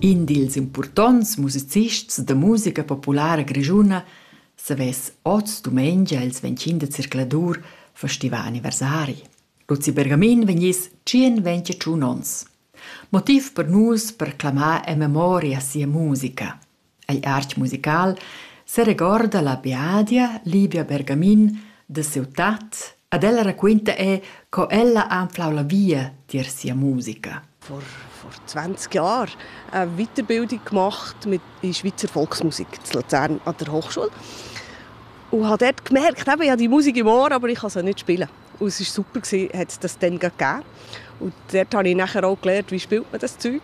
In dils impurtonts musicists da musica populara grischuna savess oz dumengia ils 25 de circladur festival anniversari. Luzi Bergamin vegniss 121 onns. Motiv per nus per clamar en memoria sia musica. Igl artg musical seregorda la biadia Livia Bergamin da siu tat ed ella raquinta era co ella ha anflau la via tier sia musica. Vor, vor 20 Jahren eine Weiterbildung gemacht mit in Schweizer Volksmusik in Luzern an der Hochschule und habe dort gemerkt, eben, ich habe die Musik im Ohr, aber ich kann sie nicht spielen. Und es war super, gewesen, hat das dann gegeben. Und dort habe ich nachher auch gelernt, wie spielt man das Zeug.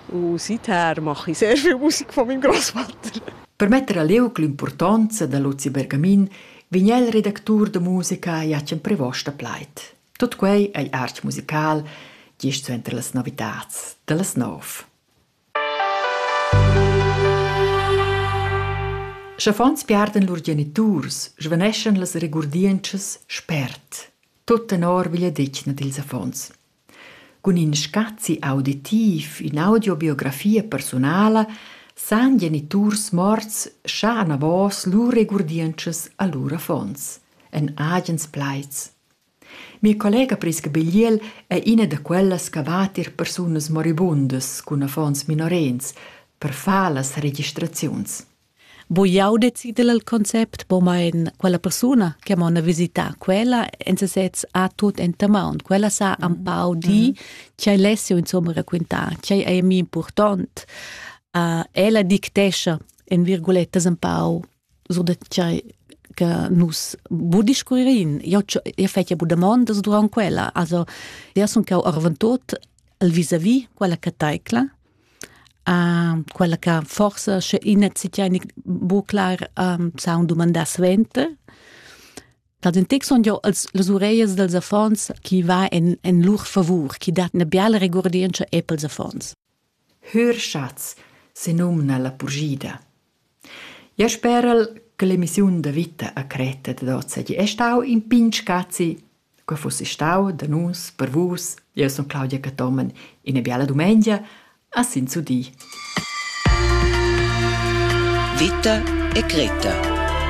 Und seither mache ich sehr viel Musik von meinem Großvater. Per metter a liug l'importanza da Luzi Bergamin vegn el redactur de musica Jacen Prevosta pleit. Tot quei ei arch musical, gist suenter las novitats, dallas nov. Sch'affons piardan lur geniturs, svaneschan las regurdientschas spert, tut tenor vigliadetgna dils affons. Cun in scazi auditiv, ün'audiobiografia persunala san geniturs morts schar anavos lur regurdientschas a lur affons, en agens plaids. Mia collega Prisca Bigliel è ina da quellas che va tier persunas moribundas cun affons minorens per far las registraziuns. Bu jau decider il concept, bo mein quella persuna che m'ha visità quella en sesez ha tut enta maun. Quella sa un pau di che lessi insomma raquintar, che è mi important. Uh, ella dictescha en virgulettas un pau sur da tgei che nus bu discurririn. Io io fetja bu damondas durant quella. Also, io sun cau arventut al vis-a-vis quella che taicla, uh, quella che forse sche ina zitja bu clar um, sa un domanda svente. Da den tec son jo als las ureias dels affons chi va en en lur favur, chi dat 'na biala regurdientscha e pels affons. Hörschatz senumna la purschida. Ja spera'l che l'emissiun da vita a Creta dad hoz seigi e stau in pign scazi. Quei fussi stau da nus, per vus. Jeu sun Claudia Cathomen, ina biala dumengia, a s'inzudir. Vita e Creta